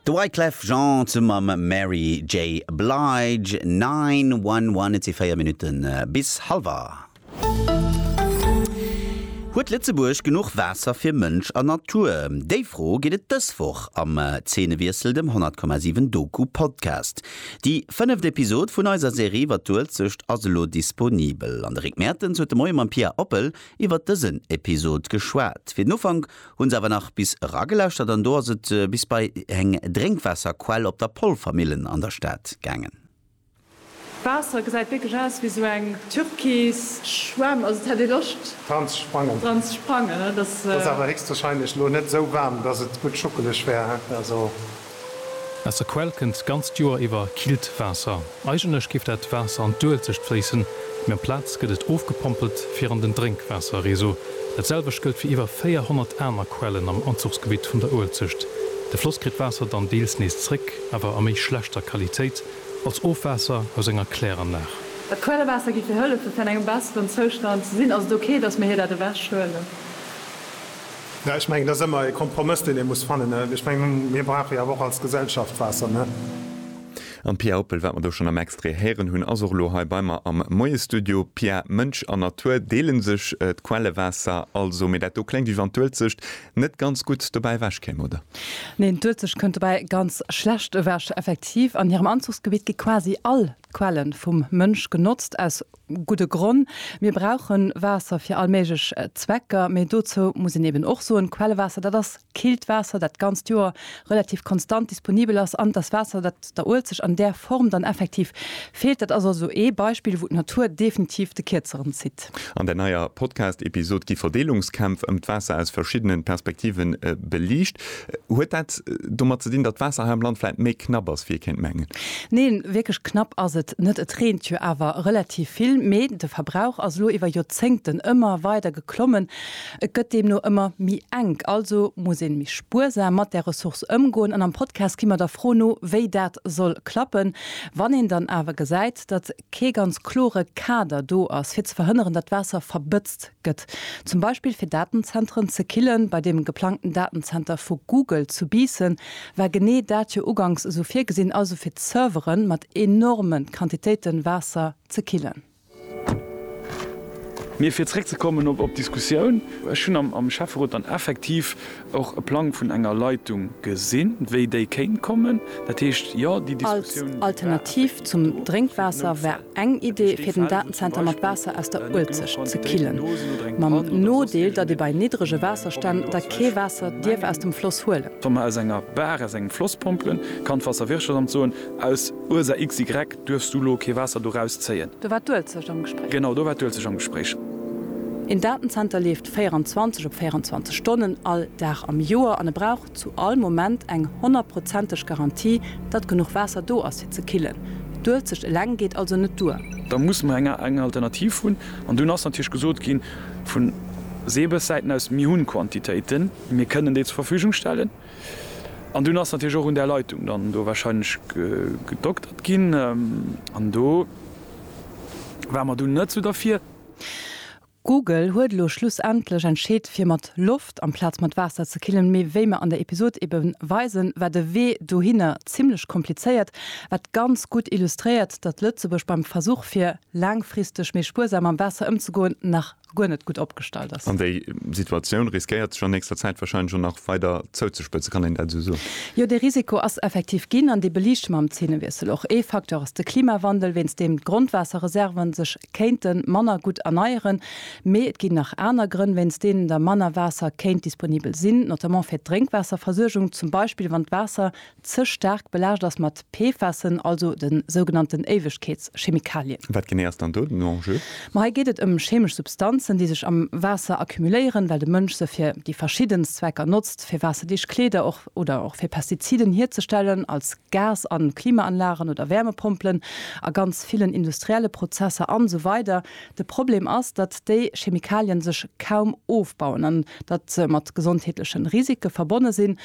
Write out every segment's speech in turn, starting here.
De Wyclef Jean zu mam Mary J. Blige, 9-1-1, et si 4 Minutte bis halwer. Huet Lëtzebuerg genuch Waasser fir Mënsch a Natur? Déi Fro geet et dës Woch am Zeenewiessel, dem 100,7 Doku Podcast. Déi fënneft Episod vun eiser Serie iwwer d'Uelzecht ass elo disponibel an de Rick Mertens huet de Moie mam Pia Oppel iwwer dësen Episod geschwat. Fir den Ufank Hun se awer nach bis eragelauschert an do ass et bis bei eng Drénkwaasserquell op der Polvermillen an der Stad gaangen. D'Waasser gesäit wierklech aus ewéi sou eng türkis Schwämm, also et hätt ee Loscht dran ze sprangen. Ass awer héchstwahrscheinlech lo net sou waarm, dass et gutt schuckeleg wär. Aus der Quell kënnt d'ganzt Joer iwwer killt Waasser. Eigentlech géif dat Waasser an d'Uelzecht fléissen, mee amplaz gëtt et ofgepompelt fir an den Drénkwaasserreseau. Dat selwecht gëllt fir iwwer 400 aner Quellen am Anzuchsgebitt vun der Uelzecht. De Floss kritt d'Waasser dann deels nees zréck, awer a méi schlechter Qualitéit, als Ofwaasser aus enger Kläranlag. Dat Quellewaasser géif hir hëllefen, fir an engem besseren Zoustand ze sinn. Ass et ok, datt mir hir dat ewechhuelen? Jo, ech mengen, et ass ëmmer e Kompromëss, deen ee muss fannen. Ech mengen, mir brauche jo awer och als Gesellschaft Waasser, ne? An d'Pia Oppel, wat mer do schonn am Extrait héieren hunn, ass och elo hei bei mer am Moie-Studio. Pia, Mënsch an Natur deele sech d'Quellewaasser also, mee dat do kléngt wéi wann d'Uelzecht net ganz gutt dobäi ewech kéim, oder? Neen, d'Uelzecht kënnt dobäi ganz schlecht ewech. Effektiv, an hirem Anzuchsgebitt gi quasi all d'Quelle vum Mënsch genotzt, aus Gudde Gronn, Mir brauche Waasser fir all méiglech Zwecker, mee dozou muss een eben och soen, Quellewaasser, dat ass killt Waasser, dat d'ganzt Joer relativ konstant disponibel ass, an et ass Waasser, dat der Uelzecht an där Form dann effektiv feelt. Dat ass also ee Beispill, wou d'Natur definitiv de Kierzeren zitt. An der neier Podcast-Episod gi Verdeelungskämpf ëm d'Waasser aus verschiddene Perspektive beliicht. Huet dat domat ze dinn, datt d'Waasser hei am Land vläit méi knapp ass, wéi ee kéint mengen? Neen, wierklech knapp ass et net. Et reent jo awer relativ vill, mee de Verbrauch ass elo iwwer Joerzéngten ëmmer weider geklommen. Et gëtt deemno ëmmer méi enk, also muss een méi spuersam mat där Ressource ëmgoen. An am Podcast gi mer der Fro no, wéi dat soll klappen, wann een dann awer gesäit, datt kee ganz klore Kader do ass, fir ze verhënneren, datt d'Waasser verbëtzt Gëtt. Zum Beispill fir Datenzenteren ze killen. Bei deem geplangten Datenzenter vu Google zu Biissen war genee dat jo uganks esou virgesinn, also fir d'Servere mat enorme Quantitéite Waasser ze killen. Mee fir zeréckzekommen op d'Diskussioun, Ech hunn am Schäfferot dann effektiv Och e Plang vun enger Leitung gesinn, wéi déi kéint kommen. Dat heescht, jo, déi Diskussioun, déi war effektiv. Als Alternativ zum Drénkwaasser war eng Idee, fir den Datenzenter mat Waasser aus der Uelzecht ze killen. Mam Nodeel, datt ee bei niddrege Waasserstänn da kee Waasser dierf aus dem Floss huelen. Wa mer aus enger Bar, aus engem Floss pompelen, kann d'Waasserwirtschaftsamt soen, aus Ursa XY duerfs du elo kee Waasser do rauszéien. Do war d'Uelzecht am Gespréich. Genau, do war d'Uelzecht am Gespréich. Een Datenzenter leeft 24 op 24 Stonnen all Dag am Joer an e brauch zu all Moment eng honnertprozenteg Garantie, datt genuch Waasser do ass fir ze killen. D'Uelzecht eleng geet also net duer. Da muss mer eng eng Alternativ hunn. An dunn ass natierlech gesot gi vu Seebessäiten aus, mir hunn Quantitéiten, mir kënnen déi zur Verfügung stellen. An dunn ass natierlech och un där Leitung dann do warscheinlech gedoktert ginn. An do ware mer dunn net esou derfir. Google huet elo schlussendlech entscheet fir mat Loft amplaz mat Waasser ze killen, mee wéi mer an der Episod ebe weisen, war de Wee dohinner zimmlech komplizéiert, wat ganz gutt illustréiert, datt Lëtzebuerg beim Versuch fir laangfristeg méi spuersam mam Waasser ëmzegoen nach guer net gutt opgestallt ass. An déi Situatioun riskéiert sech an nächster Zäit wahrscheinlech och nach weider zouzespëtzen, kann een dat esou soen? Jo, dee Risiko ass effektiv ginn an dee beliichte mer am Zeenewiessel och. Ee Facteur ass de Klimawandel, wéinst deem d'Grondwaasserreserven sech kéinte manner gutt erneieren, mee et ginn nach aner Grënn, wéinst deenen da manner Waasser kéint disponibel sinn, notamment fir d'Drénkwaasserversuergung, zum Beispill wann d'Waasser ze staark belaascht ass mat PFASen, also de sougenannten Éiwegkeetschemikalien. Wat genee ass dann do den Enjeu? Ma hei geet et ëm cheemesch Substanzen, déi sech am Waasser accumuléieren, well de Mënsch se fir déi verschiddenst Zwecker notzt, fir waasserdicht Kleeder, och oder och fir Pestiziden hierzestellen, als Gas a Klimaanlagen oder Wärmepompelen, a ganz villen industrielle Prozesser an esou weider De Problem ass, datt déi Chemikalien sech kaum ofbauen an datt se mat gesondheetlechen Risike verbonne sinn.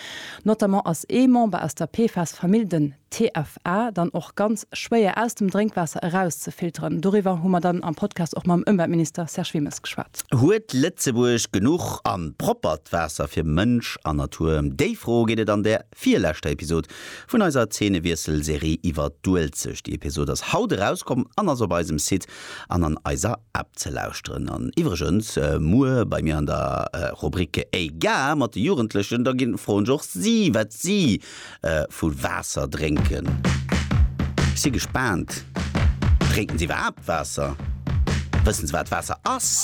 Notamment ass ee Member aus der PFAS-Famill, den. TFA dann och ganz schwéier aus dem Drénkwaasser erauszefilteren. Doriwwer hu mer dann am Podcast och mam Ëmweltminister Serge Wilmes geschwat. Huet Lëtzebuerg genuch an proppert Waasser fir Mënsch an Natur? Em déi Fro geet et an der virleschter Episod vun eiser Zeenewiessel-Serie iwwer d'Uelzecht. Déi Episod ass haut erauskomm an ass op eisem Site an an eiser App ze lauschteren. An iwwregens, muer bei mir an der Rubrik Ey Gare mat de Jugendlechen, da ginn, froen ech och si, wat si vu Waasser drénken. Ech si gespaant, Drénken se iwwerhaapt Waasser? Wëssen se, wat Waasser ass?